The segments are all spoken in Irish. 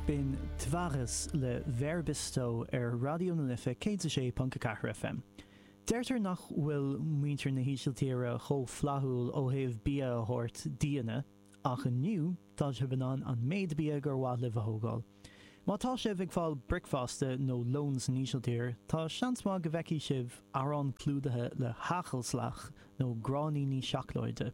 Binnenwaarts le Vere Bisto ar Raidió na Life 106.4 FM. Deirtear nach bhfuil muintir na hÍsiltíre chomh flaithiúil ó thaobh bia a thabhairt d'aíonna, ach inniu tá sibh in ann an méid bia gur mhaith libh a thógáil. Má tá sibh ag fáil bricfeasta nó lón san Ísiltír, tá seans maith go bhfeicfidh sibh arán clúdaithe le hagelslag nó gráinníní seacláide.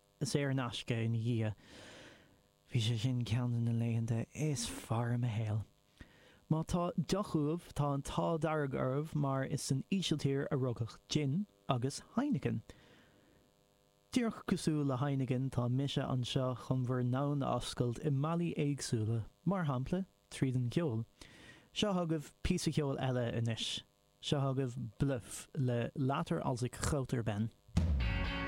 saor in aisce ina dhiaidh. Bhí sé sin ceann de na laethanta is fearr i mo shaol. Má tá deoch uaibh, tá an t-ádh dearg oraibh mar is san Ísiltír a rugadh jin agus Heineken. Díreach cosúil le Heineken, tá mise anseo chun bhur ndomhan a oscailt i mbealaí éagsúla, mar shampla, tríd an gceol. Seo chugaibh píosa ceoil eile anois. Seo chugaibh BLØF le Later als ik groot ben.